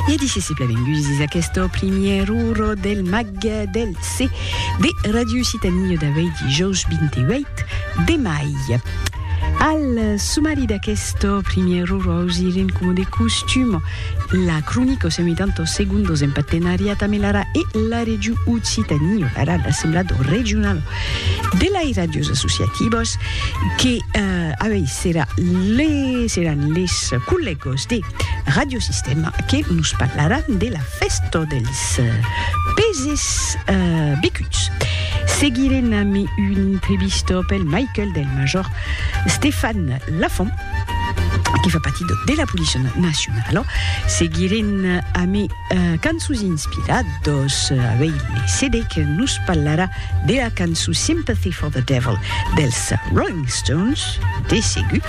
E d'ici se plavengusis aqueste primièr uro del mag del C de Ràdio Occitània d'avui dijòus 28 de mai. Al sumari d'aquest primièr uro ausirem coma de costum la cronica o semitantos segundos en partenariat amb l'ARA e la Region Occitània, l'ARA, l'Assemblat Regional de lai ràdios associativos que avei serà le, seran les collegos de Radio Sistema que nos parlaràn de la festa dels peses becuts. Seguirem ami una entrevista pel Michael del major Stefan Lafont que fa partir de, de la Policia Nacionala. Seguirem ami cançons inspirados avei le CD que nos parlarà Dera cançon Sympathy for the Devil dels Rolling Stones, de segur.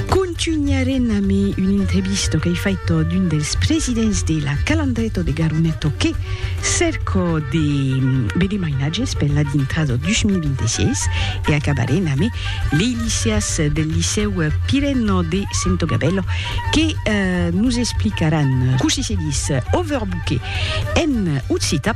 Contunharem amé un intrevisto qu'ei faito d'un dels presidents de la Calandreto de Garuneto que cerco de veder mainatges per la dintrada 2026 e acabarem amé lei liceas del Liceu Pireno de Sento Gabello que nos explicaràn cossí se ditz overbooker en occitan.